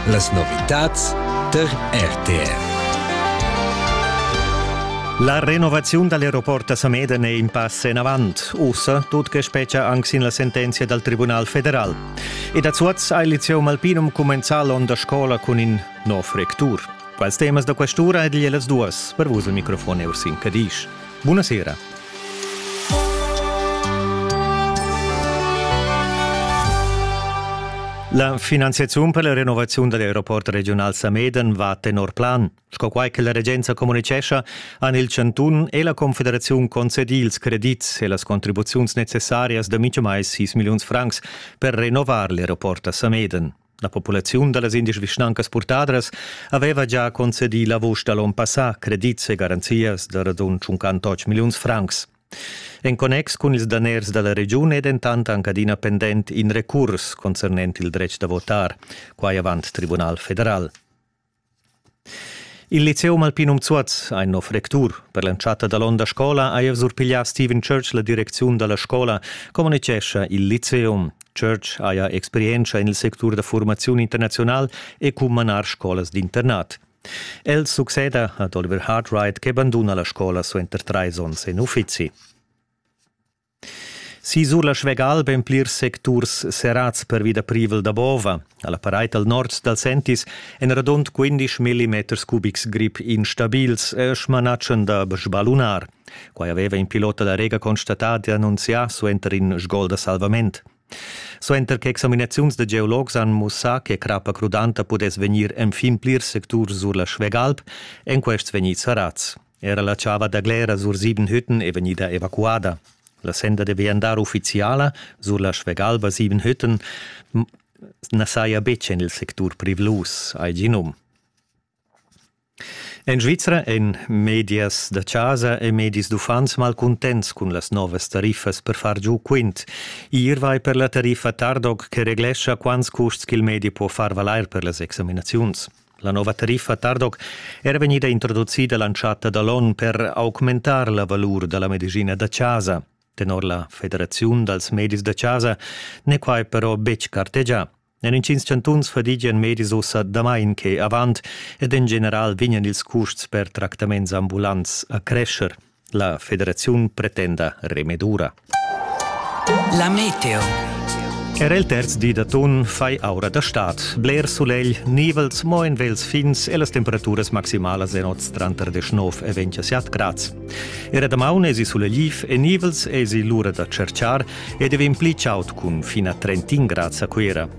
Las novitads per RTR. La renovaziun dall'aeroport da Sameden è in pass en avant, ussa tut che spetga anc sin la sentenzia dal Tribunal federal. Ed a Zuoz ha il liceo Malpinum cumenzà l'onn da scola cun in nov rectur. Quals temas da questura ed las duas per vus il microfon Ursin Cadisch. Bunasera. La finanziaziun per la renovaziun dall'aeroport regional Sameden va tenor plan. Sco quai che la regenza communicescha, han il Chantun e la Confederaziun concedì ils credits e las contribuziuns necessarias da mintgamai 6 milliuns francs per renovar l'aeroport a Sameden. La populaziun da las indesch vischnancas purtadras aveva già concedì la vusch da l'onn passà credits e garanzias da radund 58 milliuns francs. En connex cun ils daners da la regiun è dentant anc adina pendent in recurs concernent il dretg da votar, quai avant Tribunal federal. Il liceum alpinum Zuoz ha in nov rectur. Per l'entschatta dall'onda scola ha el surpiglià Stephen Church la direcziun dalla scola, communitgescha il liceum. Church haja experientscha en il sectur da formaziun internaziunal e cun manar scolas d'internat. El succeda ad Oliver Hartwright che banduna la scola suenter trais onns en uffizi. Sisur la Schwegal be en plirs secturs serrads pervi da privel da bova. A la paraid al nord dal Sentis èn radund 15 millimeters cubics grip instabils e smanatschan da sbalunar. Quai aveva in pilota da Rega constatà di annunzià suenter in sgol da salvament. Suenter che examinaziuns da geologs han mussà che crappa crudanta pudess vegnir enfin plirs secturs sur la Schwegalp, èn quests vegnids sarats. Era la chava da Glera sur sieben Hütten è vegnida evacuada. La senda deve andar ufficiala sur la Schwegalva sieben Hütten na saja betg en il sectur privlus, hai gi num. En Svizra èn medias da chasa e medis d'uffants malcuntents cun las novas tariffas per far giu quint. Ir vai per la tariffa Tardog che reglescha quants custs ch'il medi po far valair per las examinaziuns. La nova tariffa Tardoc era vegnida introducida l'entschatta da l'onn per augmentar la valur da la medicina da chasa. Tenor la Federaziun dals medis da chasa n'è quai però betg cartegià. En intgins chantuns fadigian medis ussa damain che avant ed en general vegnan ils custs per tractaments ambulants a crescher. La federaziun pretenda remedura. La meteo. Er el terz di d'atun fai aura da stad, bler sulegl, nivels mo en vels fins e las temperaturas maximalas en oz tranter 19 e 27 grads. Era damaun esi sulegliv e nivels esi l'ura da cerciar ed è vegn pli chaud cun fina 31 grads a Cuira.